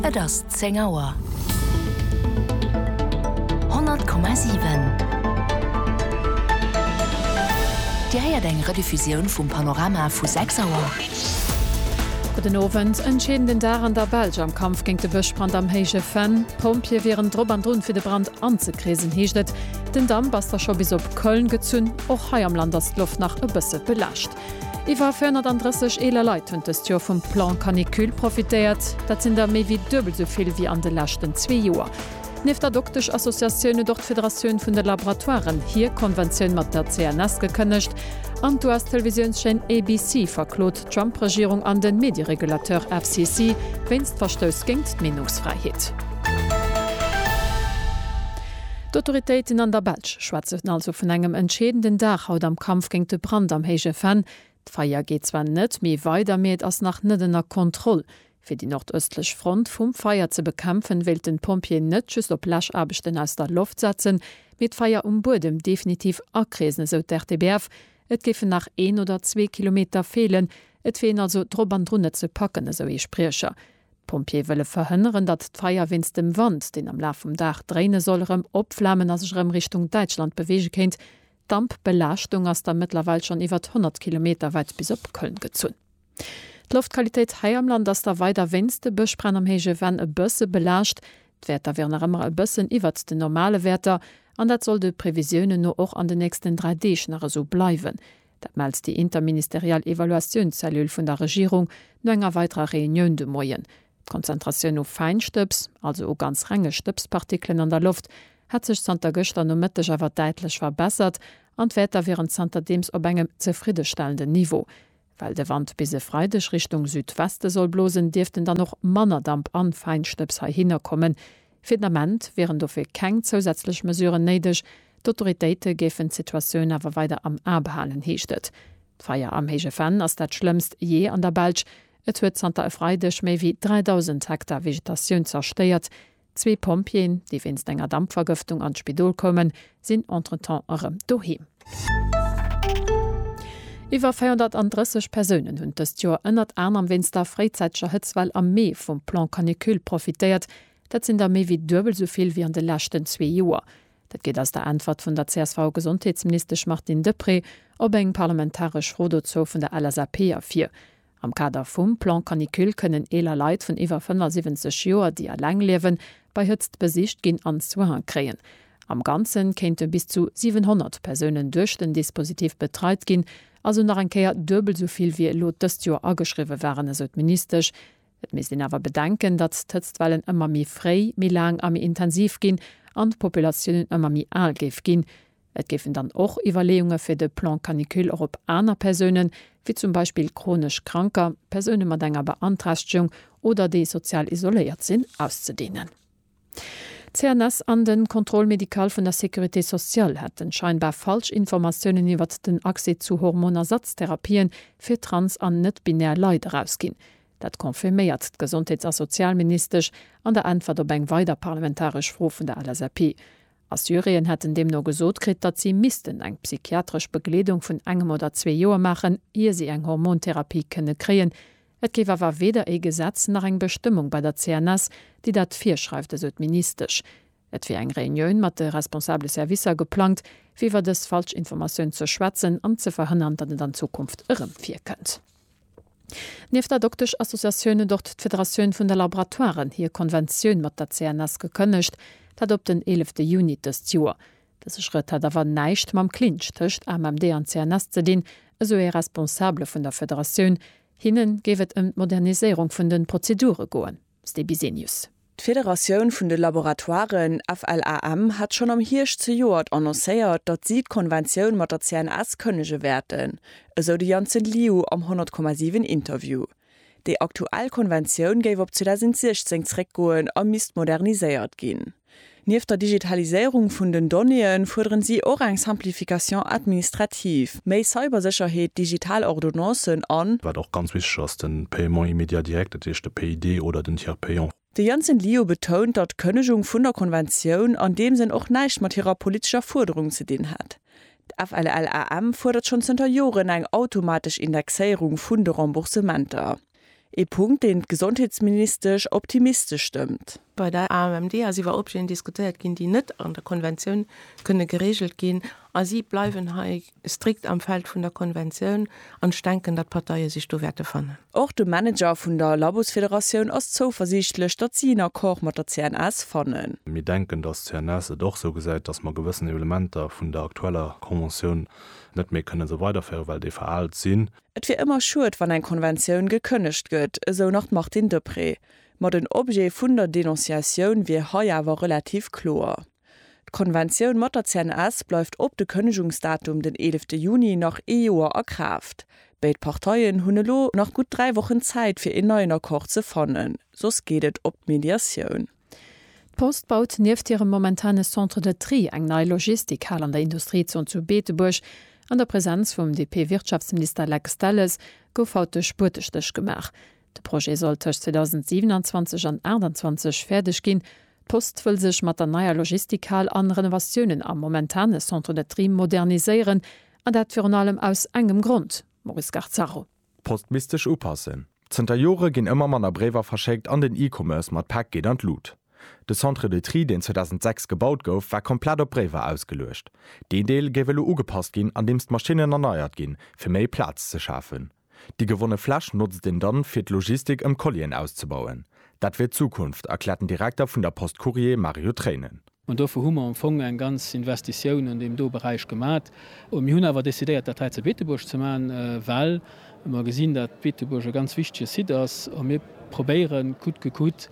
Et ass 10 Auer. 100,7 Dir héiert eng Rediffusioun vum Panorama vu 6 Auer. Gudden Owend. Entscheedenden Dag an der Belsch am Kampf géint de Bëschbrand am Héije Venn. D'Pompjeeë wieren drop an drun, fir de Brand anzekreesen, heescht et. Den Damp ass da scho bis op Köln gezunn. Och hei am Land ass d'Loft nach e bësse belaascht. Iwwer 430 eeler Leit hunn dëst Joer vum Plan Canicule profitéiert. Dat sinn der méi wéi duebel esou vill wéi an de leschten zwee Joer. Nieft der Doktesch-Associatioun huet och d'Federatioun vun de Laboratoiren hir Konventioun mat der CNS gekënnegt an d'US-Televisiounschaîne ABC verklot d'Trump-Regierung an de Medieregulateur FCC wéinst Verstouss géint d'Meenungsfräiheet. D'Autoritéiten an der Belsch schwätzen also vun engem entscheedenden Dag haut am Kampf géint de Brand am Héije Venn. D'Feier geet zwar net méi weider, mee et ass nach net ënner Kontroll. Fir déi nordëstlech Front vum Feier ze bekämpfen, wéilten d'Pompjeeën net just op Läschaarbechten aus der Loft setzen, mee d'Feier um Buedem definitiv akreesen, esou d'RTBF. Et géifen nach een oder zwee Kilometer feelen. Et wier een also drop an drun, et ze packen, esou ee Spriecher. D'Pompjeeë wëlle verhënneren, datt d'Feier wéinst dem Wand, deen am Laf vum Dag dréine soll, erëm opflamen a sech erëm Richtung Däitschland beweege kéint. D'Dampbelaaschtung ass da mëttlerweil schonn iwwert 100 Kilometer wäit bis op Köln gezunn. D'Loftqualitéit hei am Land ass da weider wéinst de Bëschbränn am héije Venn e bësse belaascht. D'Wäerter wieren nach ëmmer e bëssen iwwert den normale Wäerter an dat soll de Previsiounen no och an den nächsten dräi Deeg nach esou bleiwen. Dat mellt déi interministeriell Evaluatiounszellule vun der Regierung no enger weiderer Reunioun de Moien. D'Konzentratioun u Fäinstëbs, also u ganz renge Stëbspartikelen an der Loft, hätt sech zanter gëschter Nomëtteg awer däitlech verbessert an d'Wäerter wieren zanterdeems op engem zefriddestellenden Niveau. Well de Wand bis e Freideg Richtung Südweste soll blosen, dierften dann och manner Damp an Fäinstëbs heihinner kommen, Fir den Ament wieren dofir keng zousätzlech Mesuren néideg. D'Autoritéite géifen d'Situatioun awer weider am A behalen, heescht et. D'Feier am Héije Venn ass dat schlëmmst jee an der Belsch. Et huet zanter e Freideg méi wéi 3.000 Hektar Vegetatioun zerstéiert. Zwee Pompjeeën, déi wéinst enger Dampvergëftung an d'Spidol koumen, sinn entretemps erëm doheem. Iwwer 430 Persounen hunn dëst Joer ënnert anerem wéinst der fréizäiteger Hëtzwell am Mee vum Plan Canicule profitéiert. Dat sinn der méi wéi duebel sou vill wéi an de leschten zwee Joer. Dat geet aus der Äntwert vun der CSV-Gesondheetsministesch Martine Deprez op eng parlamentaresch Fro dozou vun der LSAP ervir. Am Kader vum Plan Canicule kënnen eeler Leit vun iwwer 75 Joer, déi eleng liewen, bei Hëtzt besicht ginn an Soinen kréien. Am Ganze kéinte bis zu 700 Persounen duerch den Dispositif betreit ginn, also nach eng Kéier duebel esou vill wéi elo dëst Joer ageschriwwe waren, esou d'Ministesch. Et misst een awer bedenken, datt d'Hëtztwellen ëmmer méi fréi, méi laang a méi intensiv ginn an d'Populatiounen ëmmer méi al géif ginn. Et géifen dann och Iwwerleeunge fir de Plan canicule och op aner Persounen, wéi zum Beispill chronesch Kranker, Persoune mat enger Beanträchtegung oder déi sozial isoléiert sinn, auszedehnen. D'CNS an de Contrôle médical vun der Sécurité sociale hätten scheinbar falsch Informatiounen iwwert den Accès zu Hormonersatztherapien fir trans an net-binär Leit erausginn. Dat confirméiert d'Gesondheets a Sozialministesch an der Äntwert op eng weider parlamentaresch Fro vun der LSAP. A Syrien hätt en deemno gesot kritt, datt si missten eng psychiatresch Begleedung vun engem oder zwee Joer maachen, ier si eng Hormontherapie kënne kréien. Et géif awer weder ee Gesetz nach eng Bestëmmung bei der CNS, déi dat virschreift, esou d'Ministesch. Et wier eng Reunioun mat de responsabele Servicer geplangt, fir iwwer dës falsch Informatioun ze schwätzen an ze verhënnern, datt et an Zukunft erëm virkënnt. Nieft der Doktesch-Associatioun huet och d'Federatioun vun de Laboratoiren hir Konventioun mat der CNS gekënnegt, dat op den eelefte Juni dëst Joer. Dëse Schrëtt hätt awer näischt mam Clinch tëscht AMMD an CNS ze dinn, esou ee Responsabele vun der Federatioun. Hinne géif et ëm d'Moderniséierung vun de Prozedure goen. Ste Bisenius. D'Federatioun vun de Laboratoiren, FLAM, hat schonn am Hierscht zejoert annoncéiert, datt si d'Konventioun mat der CNS kënnege wäerten, esou de Janssen Liu am 100 Komma 7 Interview. Déi aktuell Konventioun géif op 2016 zréckgoen a misst moderniséiert ginn. Nieft der Digitaliséierung vun den Donnéeën fuerderen si och eng Simplification administrative, méi Cybersécherheet, digital Ordonnancen an. Wat och ganz wichteg ass, de Paiement immédiat direct, dat heescht de PID oder den Tiers payant. De Janssen Liu betount, datt d'Kënnegung vun der Konventioun an deem Sënn och näischt mat hirer politescher Fuerderung ze dinn hätt. D'FLLAM fuerdert schonn zënter Joren eng automatesch Indexéierung vun de Remboursementer. Ee Punkt, deen d'Gesondheetsministesch optimistesch stëmmt. Bei der AMMD ass iwwer Objeten diskutéiert ginn, déi net an der Konventioun kënne gereegelt ginn. A si bleiwen hei strikt am Feld vun der Konventioun. An ech denken, datt d'Parteie sech do wäerte fannen. Och de Manager vun der Labosfederatioun ass zouversiichtlech, datt si en Accord mat der CNS fannen. Mir denken, datt d'CNS et och esou gesäit, datt mer gewëssen Elementer vun der aktueller Conventioun net méi kënne esou weiderféieren, well déi veraalt sinn. Et wier ëmmer schued, wann eng Konventioun gekënnegt gëtt, esou nach d'Martine Deprez. Ma den Objet vun der Denonciatioun wier hei awer relativ kloer. D'Konventioun mat der CNS bleift op de Kënnegungsdatum den eelefte Juni nach ee Joer a Kraaft. Béid Parteien hunn elo nach gutt dräi Wochen Zäit fir een neien Accord ze fannen, soss geet et op d'Mediatioun. D'Post baut nieft hirem momentane Centre de Tri eng nei Logistikhal an der Industriezon zu Beetebuerg. An der Presenz vum DP-Wirtschaftsminister Lex Delles gouf haut de Spuertestéch gemaach. De Projet soll tëscht 2027 an 28 fäerdeg ginn. D'Post wëll sech mat der neier Logistikhal an Renovatiounen am momentane Centre de Tri moderniséieren. An dat virun allem aus engem Grond, Maurice Garzaro. D'Post misst sech upassen. Zënter Jore ginn ëmmer manner Bréiwer verschéckt an den E-Commerce mat Päck geet an d'Lut. De Centre de Tri, deen 2006 gebaut gouf, war komplett op Bréiwer ausgeluecht. Deen Deel géif elo ugepasst ginn, andeems d'Maschinnen erneiert ginn, fir méi Plaz ze schafen. Déi gewonne Fläch notzt een dann, fir d'Logistik ëm Collien auszebauen. Dat wier d'Zukunft, erkläert den Direkter vun der Post Courrier Mario Treinen. An dofir hu mer am Fong eng ganz Investitioun an deem do Beräich gemat. Mir hunn awer decidéiert, dat hei zu Beetebuerg ze maachen, well mer gesinn, datt Beetebuerg e ganz wichtige Site ass a mir probéieren, coûte que coûte,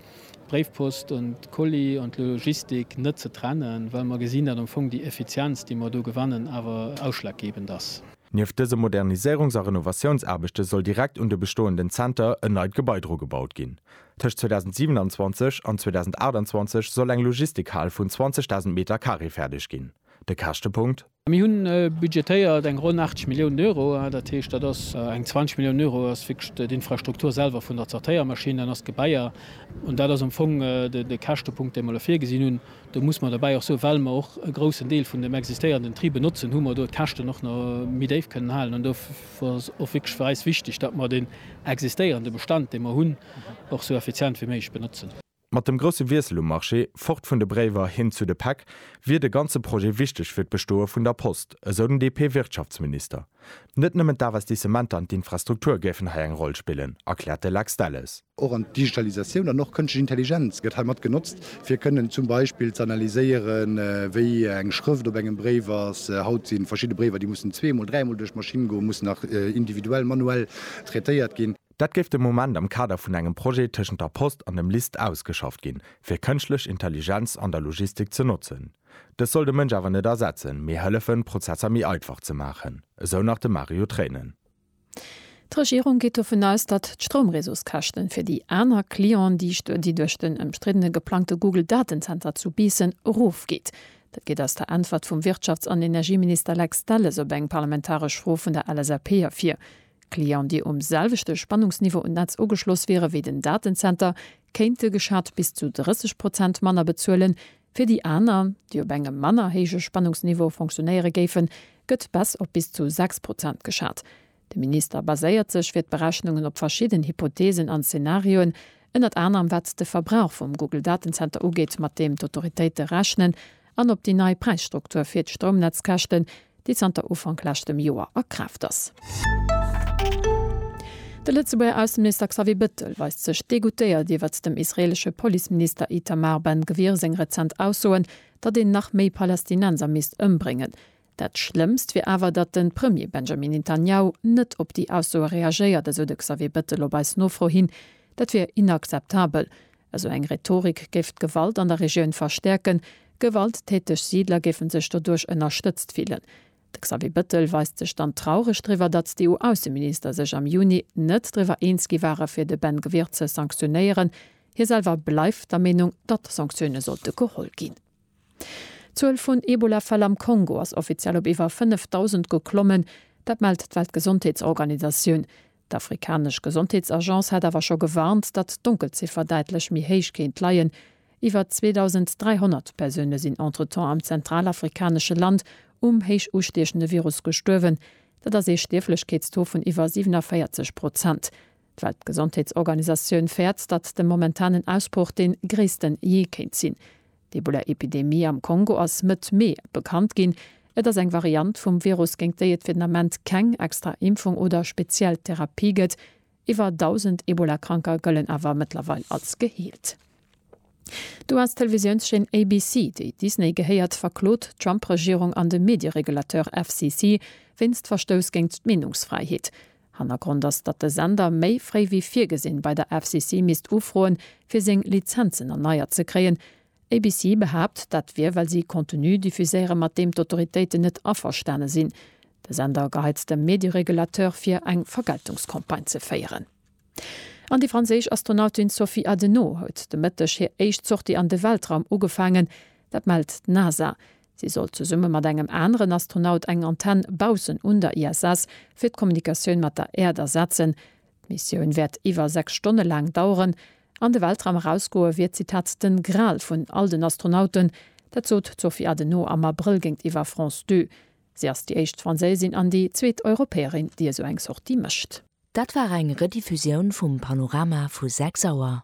d'Bréifpost an d'Colis an d'Logistik net ze trennen, well mer gesinn, datt am Fong déi Effizienz, déi mer do gewannen, awer ausschlaggebend ass. Nieft dëse Moderniséierungs a Renovatiounsaarbechte soll direkt un de bestoenden Zenter en neit Gebai dru gebaut ginn. Tëscht 2027 an 2028 soll eng Logistikhal vun 20.000 Meter Carré fäerdeg ginn. De Käschtepunkt? Mir hu budgetéiert eng ronn 80 Milliounen Euro. Dat heescht, dat ass eng 20 Milliounen Euro ass wierklech d'Infrastruktur selwer vun der Zertéiermaschinn, dann ass d'Gebaier. An dat ass am Fong de Käschtepunkt, dee mer elo virgesinn hunn. Do muss mer derbäi och soen, well mer och e groussen Deel vun dem existéierenden Tri benotzen, hu mer do d'Käschten och nach méi déif kënnen halen. ass och wierklech fir eis wichteg, datt mer deen existéierende Bestand, dee mer hunn, och esou effizient wéi méiglech benotzen. Mat dem grousse Wiessel um Marché, fort vun de Bréiwer hin zu de Päck, wier de ganze Projet wichteg fir d'Bestoe vun der Post, esou den DP-Wirtschaftsminister. Net nëmmen d'Investissementer an d'Infrastruktur géifen hei eng Roll spillen, erkläert de Lex Delles. Och an d'Digitalisatioun an och kënschtlech Intelligenz gëtt hei mat genotzt, fir kënnen zum Beispill ze analyséieren, wéi eng Schrëft op engem Bréif ass. Haut si verschidde Bréiwer, déi mussen zweemol, dräimol duerch d'Maschinn goen, mussen nach individuell, manuell traitéiert ginn. Dat géif de Moment am Kader vun engem Projet tëschent der Post an dem LIST ausgeschafft ginn, fir kënschtlech Intelligenz an der Logistik ze notzen. Dës soll de Mënsch awer net ersetzen, mee hëllefen, d'Prozesser méi einfach ze maachen, esou nach de Mario Treinen. D'Regierung geet dovun aus, datt d'Stroumreseauskäschten fir déi aner Clientë, déi duerch den ëmstriddene geplangte Google-Datenzenter zu Biissen erofgeet. Dat geet aus der Äntwert vum Wirtschafts an Energieminister Lex Delles op eng parlamentaresch Fro vun der LSAP ervir. Clientë, déi um selwechte Spannungsniveau un d'Netz ugeschloss wiere wéi den Datenzenter, kéinte geschat bis zu 30 Prozent manner bezuelen, Fir déi aner, déi op engem manner héije Spannungsniveau fonctionéiere géifen, gëtt Baisse op bis zu 6 Prozent geschat. De Minister baséiert sech fir d'Berechnungen op verschidden Hypotheesen an Zenarioen, ënnert anerem wat de Verbrauch vum Google-Datenzenter ugeet, mat deem d'Autoritéite rechnen, an op déi nei Präisstruktur fir d'Stroumnetzkäschten, déi zanter Ufank leschtem Joer a Kraaft ass. De Lëtzebuerger Ausseminister Xavier Bettel weist sech degoutéiert iwwert dem israeelesche Policeminister Itamar Ben Gvir seng rezent Aussoen, datt een nach méi Palästinenser misst ëmbréngen. Dat Schlëmmst wier awer, datt de Premier Benjamin Netanjahu net op déi Aussoe reagéiert, esou de Xavier Bettel op eis Nofro hin. Dat wier inakzeptabel, Esou eng Rhetorik géif d'Gewalt an der Regioun verstäerken, gewalttäteg Siidler géifen sech doduerch ënnerstëtzt fillen. De Xavier Bettel weist sech dann traureg driwwer, datt d'EU-Ausseminister sech am Juni net driwwer eens gi ware fir de Ben Gvir ze sanktionéieren. Hie selwer bleift der Meenung, datt Sanktioune sollte geholl ginn. D'Zuel vun Ebola-Fäll am Kongo ass offiziell op iwwer 5.000 geklommen. Dat mellt d'Weltgesondheetsorganisatioun. D'afrikanesch Gesondheetsagence hat awer scho gewarnt, datt d'Donkelziffer däitlech méi héich kéint leien. Iwwer 2.300 Persoune sinn entretemps am zentralafrikanesche Land um héich ustiechende Virus gestuerwen. Dat ass ee Stierflechkeetstaux vun iwwer 47 Prozent. D'Weltgesondheetsorganisatioun fäert, datt de momentanen Ausbroch dee gréissten jee kéint sinn. D'Ebola-Epidemie am Kongo ass Mëtt Mee bekannt ginn. Et ass eng Variant vum Virus, géint déi et fir den Ament keng extra Impfung oder speziell Therapie gëtt. Iwwer 1.000 Ebola-Kranker gëllen awer mëttlerweil als geheelt. D'US-Televisiounschaîne ABC, déi Disney gehéiert, verklot d'Trump-Regierung an de Medie-Regulateur FCC wéinst Verstouss géint d'Meenungsfräiheet. Hannergrond ass, datt de Sender méi fréi wéi virgesinn bei der FCC misst ufroen, fir seng Lizenzen erneiert ze kréien. ABC behaapt, dat wier, well si Contenu diffuséiere mat deem d'Autoritéiten net averstane sinn. De Sender geheizt dem Medieregulateur vir, eng Vergeltungscampagne ze féieren. An déi franséisch Astronautin Sophie Adenau huet de Mëtteg hir éischt Sortie an de Weltraum ugefaangen. Dat mellt d'NASA. Si sollt zesumme mat engem aneren Astronaut eng Antenn baussen un der ISS fir d'Kommunikatioun mat der Äerd ersetzen. D'Missioun wäert iwwer 6 Stonne laang daueren. An de Weltraum erausgoe wier, Zitat, den Gral vun all den Astronauten. Dat sot d'Sophie Adenau am Abrëll géintiwwer France Deux. Si ass déi éischt Franséisin an déi zweet Europäerin, déi esou eng Sortie mécht. Dat war eng Rediffusioun vum Panorama vu 6 Auer.